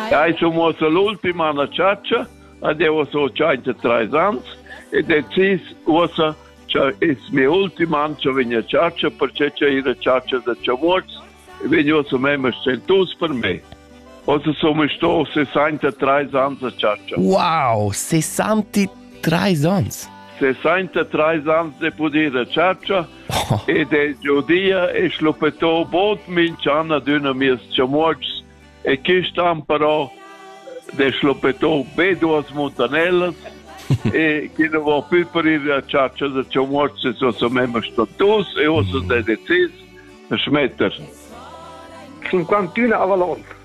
Ja, ich ho muosso l'ultima na ciaccia, ad eu so 33 ans e decis uossa cha es mia ultima an cha vegna ciaccia perché cha ira ciaccia da chavuots e vegn uossa mema stentus per me. Ossa sono sto 63 ans a ciaccia. Wow, 63 ans! 63 ans de poder a ciaccia Ed el Giudia e schluppetò bod minch'an adüna mieus chamuotschs e quist'an però de schluppetò be duas muntanellas e chi nu vo più parir a chatscha da chamuotschs e so sa memma status e uossa s'è decis da schmetter. 51 a Valon.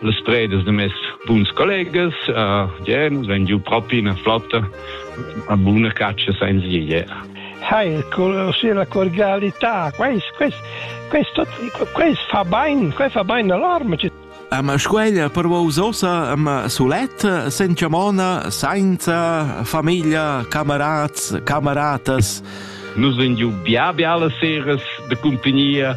las predas de mes buns collegas, uh, yeah, nus vegn giu propi ina flotta, una buna caccia senza idea. Hai, con la cordialità, questo, questo, questo fa bene, questo fa bene all'arma. Ma squeglia per usosa, ma soletta, senza mona, senza famiglia, camerats, cameratas. Nus vegn giu bia bia las seras de compagnia,